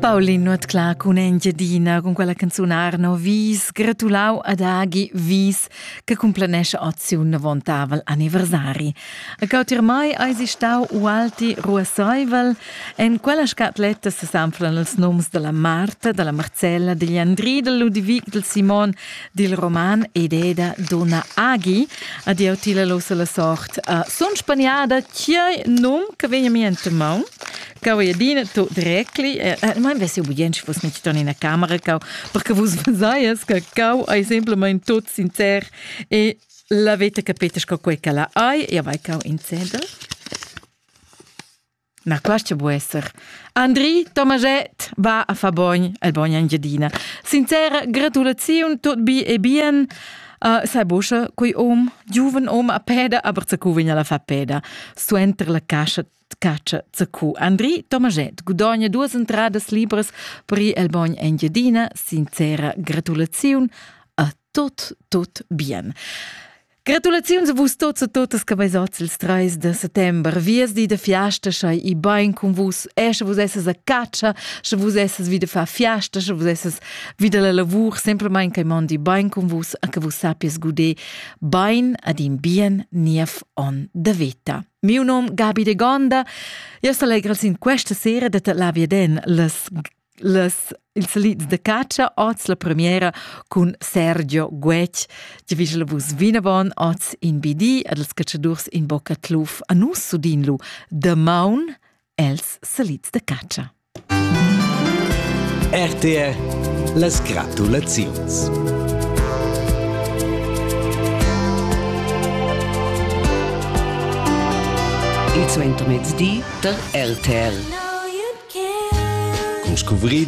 Paulin Nuotclà cun Engiadina cun quella canzun Arno Wies gratulau ad Agi Wies che cumplenesce ozi un navontavel anniversari. E cautir mai eisi stau ualti ruasseivel en quella scatletta se sanflan els noms dalla Marta, dalla Marcella, degli Andri, del Ludivic, del Simon, dil roman ed eda donna Agi ad jau tila lo la sort uh, sun spaniada chiai num che vegna mi ente maun Cau e adina to drecli, eh, eh, mai vesi obligient che fosse nicht in una camera, cau, perché vos vasaias che cau ai semplicemente tot sincer e la veta capetas co quei che la ai, e vai cau in sedel. Na quescha bu esser. Andri Tomaschett va a fa bogn el bogn Engiadina. Sincera gratulaziun tut bi e bien. Uh, sai buscha quei om, giuven om a peda, aber zacu vegn alla fa peda. Suenter la cascia caccia zacu. Andri Tomaschett gudogna duas entradas libras per ir el bogn Engiadina. Sincera gratulaziun a tut, tut bien. Gratulaziuns a vus tots e totas che besots ils 3 de settembre. Viesdi de fiasta schai i bain con vus. E sche vus esses a caccia, sche vus esses wieder fa fiasta, sche vus esses wieder la lavur, semplamain che mondi bain con vus e che vus sappies guder bain ad in bien niev on de vita. Mio nom Gabi de Gonda. Io selegro sin questa sera de te la viden las las ils salits da catscha oz la premiera cun Sergio Guetg ti vis la vus vinavon oz in BD ad els catschadurs in bocca tluf a nus sudin lu damaun els salits da catscha RTR las gratulaziuns Il suentermezdi der RTL. Con scuvrir